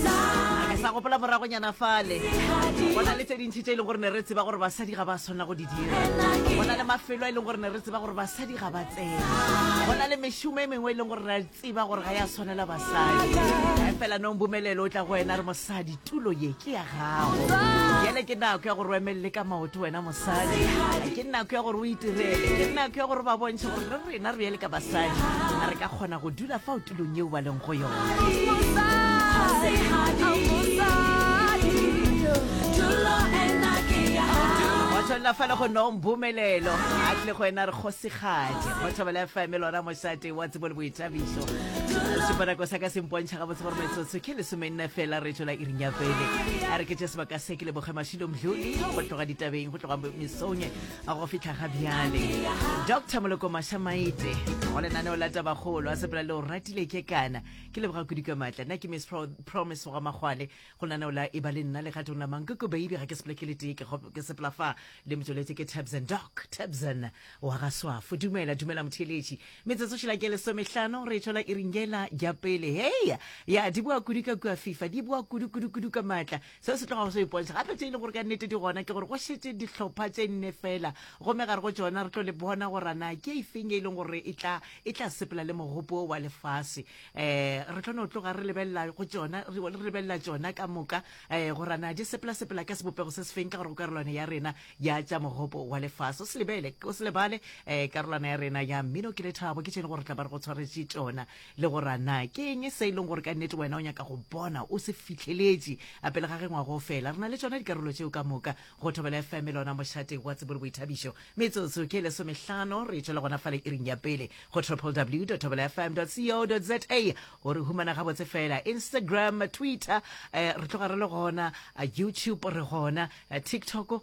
a ke sa gopola moragonyana fale go na le tse dintšhi tse e leng gore ne re tseba gore basadi ga ba swanela go di dira go na le mafelo a e leng gore ne re tseba gore basadi ga ba tsena go na le mešomo e mengwe e leng gore re tseba gore ga ya swanela basadi ga fela nong bomelelo o tla go wena re mosadi tulo ye ke ya gago yele ke nako ya gore o emelele ka maoto wena mosadi ke nako ya gore o itirele ke nako ya gore ba bontšhe gore re rena re yele ka basadi a re ka kgona go dula fa tulong yeo ba leng go yonatshwanela fela go nong bomelelo a tle go ena re kgosigadi go thobela fm lona mošate wa tsebo le boithabiso seponako sa ka se mpontšha ga botse gore metsotso ke lesome nna fela re tswela iring ya pele a re ke tše sebaka se ke leboge mašilo mdluli go tloga ditabeng go tloga mesonye go fihla ga bjale dr moloko mašamaite go lenaneo la tabagolo a sepela le o ratile ke kana ke leboga kudu ka maatla nna ke miss Pro promise wa makgwale go lenaneo la e ba le nna legatong la mankoko baby ga ke sepele ke le tee ke kgo- ke sepela fa le motsweletse ke tabsan doc tabsan wa ga swafo dumela dumela motheeletši metsotso šela ke lesomehlano re tšwela iringela ja pele heya ya di boa kudu ka kua fifa di boa kudu kudu kudu ka maatla seo se tlogago se ipontšha gape tše e le gore ka nnete di gona ke gore go šetse dihlopha tše nne fela gomme gare go tsona re tlo le bona gorana ke efeng e leng gore e tla e tla sepela le mogopo wa lefase um re tlo no tloga re lebelela go tsona re lebelela tsona ka moka um gorana di sepela sepela ka sebopego se se feng ka gore go karolwane ya rena ya tša mogopo wa lefase o se lebele o se lebale um karolwana ya rena ya mmino ke lethabo ke tšene gore tla ba re go tshwaretše tsona le gore a na ke eng se e leng gore ka nnete wena o nyaka go bona o se fitlheletše a pele ga ge ngwago o fela re na le tšona dikarolo tšeo ka moka go thobela fm le ona mošate wa tsebo le boithabišo metsotso ke lesomehlano re tšwela gona fa le iring ya pele go triple w thobela fm co za o re humana gabotse fela instagram twitter eh, re tloga re le gona eh, youtube re gona eh, tiktok